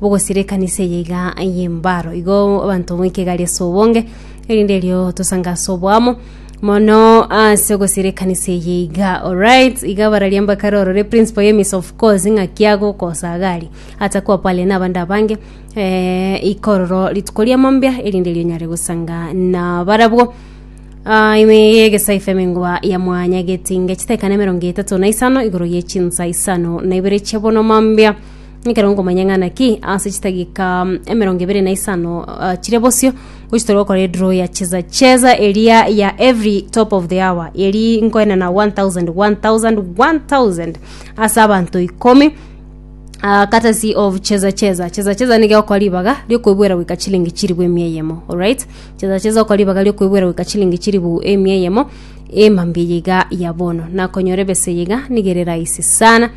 bogosira ekanisa eye iga y'embaro igo abanto moike egari ase obonge erinde erio tosange ase oboamo mono ase ogosira ekanisa eye iga alright iga bararia mbakare orore principal ya miss of course ng'aki agokosa agari atakwa pale na abande abange eh, ikororo rituko ria mambia erinde erio nyare gosanga na barabwo Ah, ime yegesa ifeme ngoa ya mwanya getinge chitekane mirongo etatu na isano igoro ye chinsa isano na ibere chebono mambia Ekero nkomanya ng'a naki ase chidagika emerongo ebere na isano ah, chire bosio gochia tore gokora edro ya cheza cheza eria ya every top of the hour eri nkoenana 1000 1000 1000 ase abanto ikomi Ah, courtesy of cheza cheza cheza cheza niga okora ribaga riokoebuera goika chilingi chiribu emia eyemo alright cheza cheza okora ribaga riokoebuera goika chilingi chiribu emia eyemo emambia eye iga ya bono nakonyora ebesa eye iga niga ere rahisi sana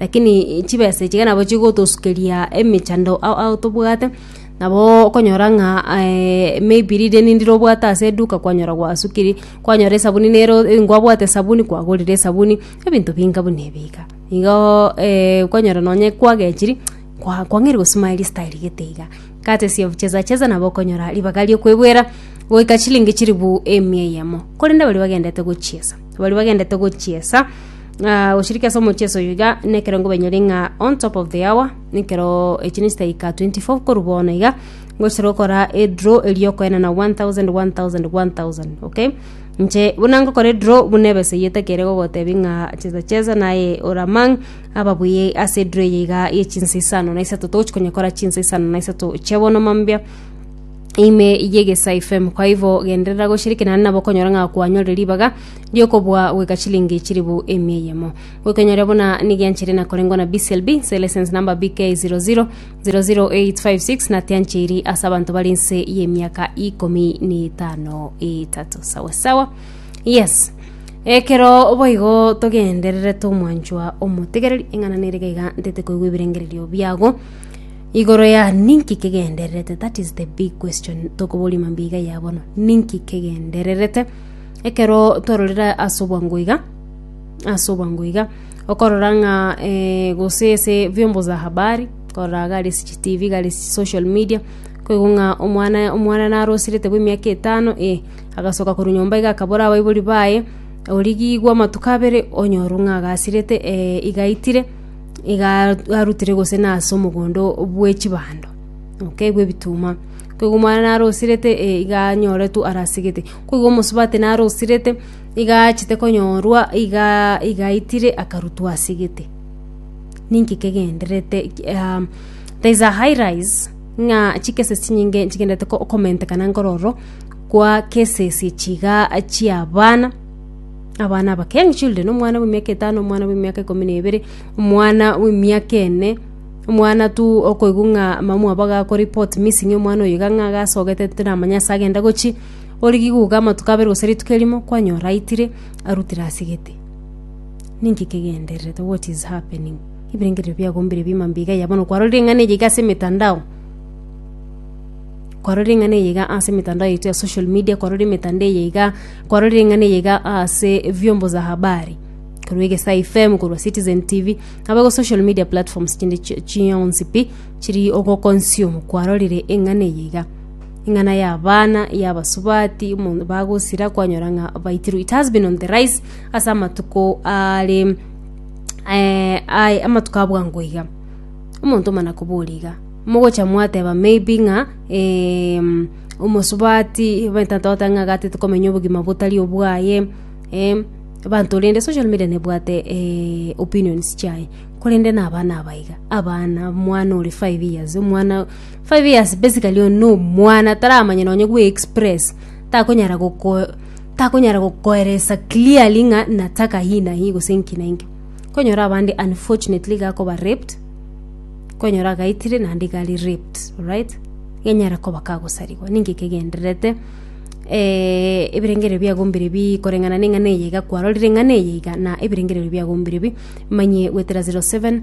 Lakini chibesa echi iga nabo chigotosukeria emechando ao ao tobwate, nabo okonyora ng'a aye maybe rireni ndire obwate ase eduka kwanyora gwasukiri, kwanyora esabuni nero ngwabwate esabuni kwagorire esabuni, ebinto binga buna ebi iga. Igoo okonyora nonye kwagechiri kwa kwang'eire gosimari style gete iga, courtesy of Cheza Cheza nabo okonyora ribaga riokoebwera goika chilingi chilifu emia eyemo. Korende baria bagendete gochiesa, baria bagendete gochiesa. Ah, goshiriki ase omochie ase oyo iga nekero ngobenyori ng'a on top of the hour nekero echine chitaika 24 korwa bono iga ngochira gokora edraw erio okoenana 1000 1000 1000 okay inche buna ngokora edraw buna ebesa eyio tekere gogotebia ng'a chesa chesa naye oramang' ababuya ase edraw eye iga ye chinsa isano na isato togochi konyekora chinsa isano na isato chia bono mambia ime ye egesaifemu kwa ivo genderera goshiriki naende nabo okonyora ng'a kwanyorire ribaga ri'okobua goika chilingi chiribu emia eyemo. Goikonyoria buna nigianchire na korengwa na BCLB nse license number BK 00 00856 na tianchiri ase abanto bari nse y'emiaka ikomi na etano etato sawa sawa yes ekero boigo togendererete omwanchwa omotegereri eng'ana nere gaiga ntete koigwa ebirengererio biago igoro ya ninki kegendererete that is the big question tokoboria mambia iga ya bono ninki kegendererete Ekero twarorire ase obwango iga, ase obwango iga, okorora ng'a gose ase vyombo za habari, korora gare ase chi tv, gare ase chi social media, koigwa ng'a omwana omwana narosirete bwa emiaka etano eh, agasoka korwa nyomba iga akabora abaibori baye, origigwe amatuko abere, onyorwe ng'a agasirete iga aitire, iga arutire gose na ase omogondo bwe chibando, okay bwe ebituma. Koigwa omwana narosirete eh iga anyoretwe arasigete. Ko igo omosubati narosirete, iga aachete konyorwa, iga iga aitire akarutwa ase egete. Ninki kegenderete um, there is a high rise ng'a chikese chinyinge chigenderete ko- komentekana nkoro ororo kwa kesesie chiga chia abana abana abake young children omwana bwa emiaka etano omwana bwa emiaka ikomi na ebere, omwana bwa emiaka ene, omwana tu okoigwa ng'a mama mwabo agakora report missing omwana oyo iga ng'a agasogete tiramanya ase agenda gochia. Ore gikuuga amatuko abere gose rituko erimo, kwanyora aitire, arutire ase gete. Ninki kegendererete? What is happening? Ebirengererio biago mbire bima mbiiga ya bono kwarorire eng'ana eye iga ase emetandao kwarorire eng'ana eye iga ase emetandao yaito ya social media kwarorire emetandao eye iga kwarorire eng'ana eye iga ase vyombo za habari korwa egesaa fm korwa citizen tv aba igo social media platforms chinde chi- chionsi pi chiri ogoconsume kwarorire eng'ana eye iga Ing'ana y'abana y'abasubati bagosira kwanyora ng'a baitirwe. It has been on the rise ase amatuko are eh, aye amatuko a bwango iga omonto omana kobora iga mogocha mwateba maybe ng'a eh, omosubati baetanta goteba ng'a iga tete komenya obogima botari obwaye eh, abanto rende social media nebwate eh, opinions chiaye korende na abana aba iga abana omwana ore five years omwana Five years basically oyo no mwana taramanya nonye gwe express takonyara goko takonyara gokoeresa clearly ng'a nataka hii na hii gose nki na nki konyora abande unfortunately gakoba raped konyora agaitire naende gari raped alright genyara koba kagosarigwa ninki kegendererete eh ebirengererio biagombire bi koreng'ana neng'ana eye iga kwarorire eng'ana eye iga na ebirengererio biagombire bi manye goetera zero seven.